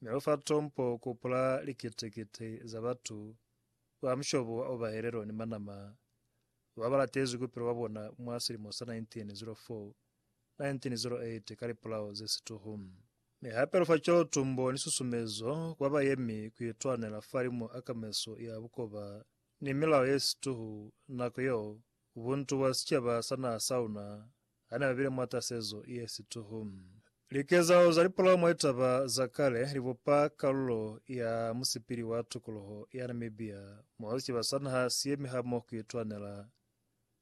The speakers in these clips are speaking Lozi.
Mi lu fa tompo ku pula likiti-kiti za batu ba mushobo wa obahelelo ni manama ba ba latezwi ku pila kwa bona mwa silimo sa 1904, 1908 ka lipulao ze situhu. Mi hape lu fa cwelotumbo ni susumezo ku ba bayemi ku itwanela fa limo a kameso ya bukoba ni milao ye situhu nako yeo buntu bwa sicaba sa naha sa luna Ha ne ba bile mwa tasezo ye situhu. Likezahalo za lipolao mwa litaba za kale li bupa kalulo ya musipili wa tukuluho ya Namibia moo siciba sa naha si yemi ha mo ku itwanela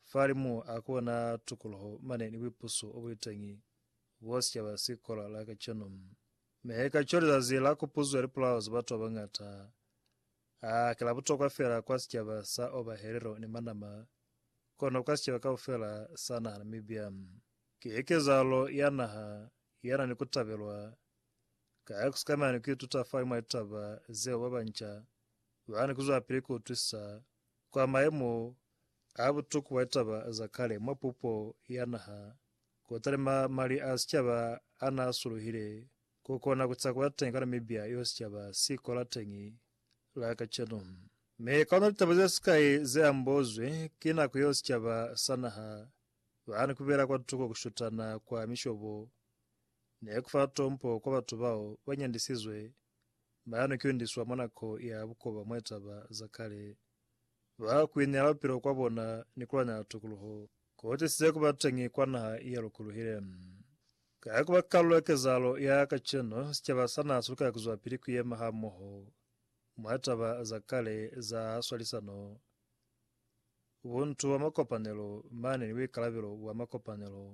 fa limu a kona tukuluho mane ni buipuso o buli teñi bo sicaba si kola la kacenu. Mehe kaco lizazi la kupuzo ya lipolao za batu ba bañata Ha ki la butokwa fela kwa sicaba sa Oba Herero ni Manama, kono kwa sicaba kaufela sa naha Namibia. Ki hekezalo ya naha ya na ni ku tabelwa, ka ya ku sikama ni ku ituta fani mwa litaba zeo ba banca ba ni ku zwelapili ku utwisisa kwa mayemo a butuku bwa litaba za kale mwa pupo ya naha, kotani mali a sicaba a na suluhile Ku kona ku ca kula teñi ka Namibia yeo sicaba si kola teñi la kacenu. Mi ka ona litaba ze sikai ze ambozwi, ki nako yeo sicaba sa naha ba ni ku bela kwa tuko ku shutana kwa mishobo ni ku fa tompo kwa batu bao ba nyandisizwe ba ni kyundiswa mwa nako ya bukoba mwa litaba za kale. Ba ku ineela bupilo kwa bona ni ku lwanyela tukuluho ku tisize ku ba teñi kwa naha ye lukuluhile. Ka ku ba kalulo ya kezahalo ya kacenu, sicaba sa naa si lukela ku zwapili ku yema hamoho mwa taba za kale za swalisano, buntu bwa makopanelo mane ni buikalabelo bwa makopanelo.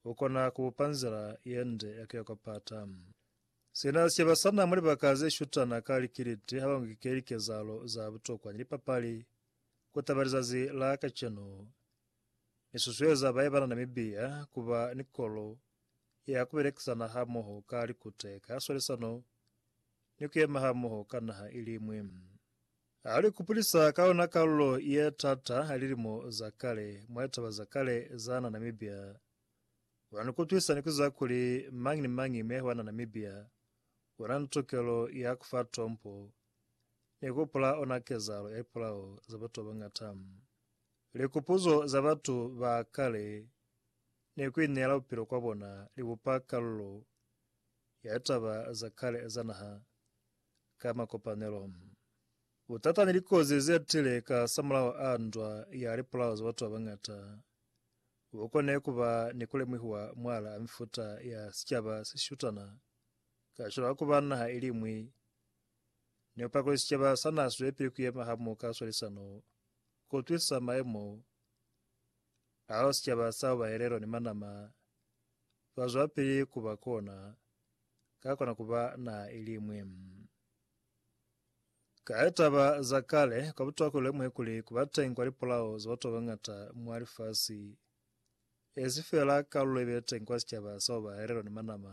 U kona ku bupa nzila ye nde ya ku ya kwa Pata. Sina sicaba sa naa mwa libaka ze shutana ka likiliti ha ba ngikeli kezahalo za butokwa ni lipapali ku taba lizazi la kacenu, Ni susueza ba yeba na ni mibiya ku ba ni kolo ya ku belekisana hamoho ka likute, ka swalisano, ni ku yema hamoho ka naha iliñwi. Ha li kupulisa ka ona kalulo ye t'ata ya lilimo za kale mwa litaba za kale za na Namibia, una ni kutwisa ni kuziba kuli mañi ni mañi me hwana Namibia una ni tukelo ya ku fa tompo ni ku hopola ona kezahalo ya lipolao za batu ba bañata. Likupuzo za batu ba kale ni ku ineela bupilo kwa bona li bupa kalulo ya taba za kale za naha ka makopanelo. Butata ni likozi ze tile ka samulaho a ndwa ya lipulao za batu ba bañata bu kone ku ba ni ku lemuhiwa mwalaa mifuta ya sicaba se shutana kacwalo ka ku ba naha i liñwi Ne u pakule sicaba sa n'a swelapili ku yema hamoka swalisano, ku utwisisa maemo ao sicaba sa ba elelo ni manama ba zwelapili ku ba kona, ka kona ku ba naha i li ñwi. Ka litaba za kale, kwa butokwa ku lemuhe kuli ku ba teñi kwa lipolao za batu ba bañata mwa lifasi, e si feela kalulo i be teñi kwa sicaba sa ba elelo ni manama,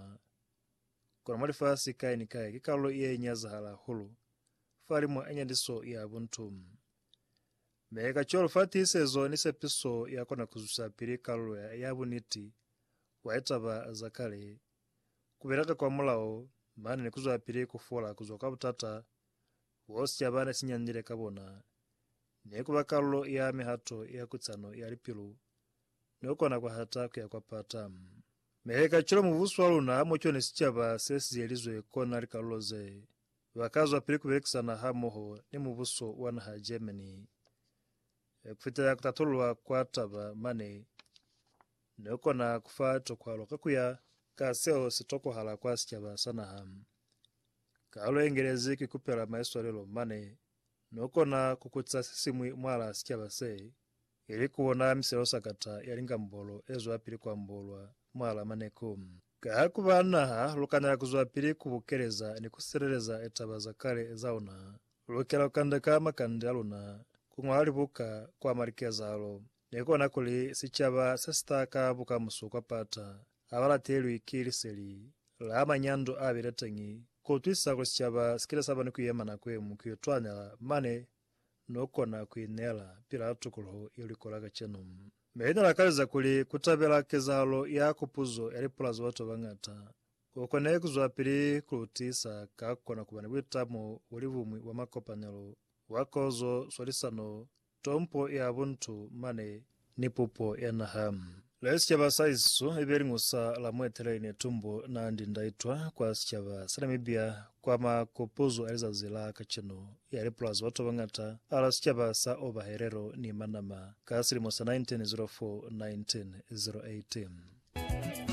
Kono mwa lifasi kai ni kai ki kalulo ye nyazahala hahulu fa limo a nyaniso ya buntu. Me kacwalo fa tiisezo ni sepiso ya kona ku zwisapili kalulo ya, ya buniti bwa litaba za kale, ku bela ka kwamulaho mane ni kuzwapili ku fola kuzwa kwa butata bo sicaba ne si nyandile ka bona, ni kuba kalulo ya mihato ya kutsano ya lipilu ni kukona kwa hata kuya kwa pata. Mehe kacwalo mubuso wa luna hamo-cwani sicaba se si yelizwe kona likalulo ze ba ka zwapili ku belekisana hamoho ni mubuso wa naha ya Germany. Ku fitela ku tatululwa kwa taba mane, ne ku kona ku fa litokwalo ka ku ya ka seo si tokohala kwa sicaba sa naha. Kalulo ye ngelezi ku ikupela maiswalelo mane No kona ku kuca se siñwi mwalaa sicaba se, ili ku bona miselo sakata ya lingambolo e zwa pili ku ambolwa mwalaa maneku. Ka ha ku ba naha, lu kanela ku zwa pili ku bukeleza ni ku sileleza litaba za kale za una. Lu lukela ku kandeka makande a luna, ku ñwala libuka, ku ama likezahalo, Ni kona kuli sicaba se si ta ka bukamuso kwa Pata ha ba latelwi ki liseli la manyando a bile teñi. Ku utwisisa kuli sicaba si kile sa ba ni ku yema nako ye ñwi ku itwanela mane no kona ku ineela pila tukuluho ye lwi kola kacenu. Mi li ne la kaleza kuli ku tabela kezahalo ya kupuzo ya lipula za batu ba bañata ku kone ku zwelapili ku lu tiisa ka ku kona ku ba ni buitamo bwa libumwi bwa makopanelo bwa kozo, swalisano, Tompo ya buntu mane ni pupo ya naha. Le sicaba sa isu ibe liñwi sa la mueteleli ne tumbu na ndi ndaitwa kwa sicaba sa Namibia kwa makupuzu a lizazi la kacenu ya lipulazi batu babangata ala sicaba sa Oba Herero ni Manama ka silimo sa 1904 1908.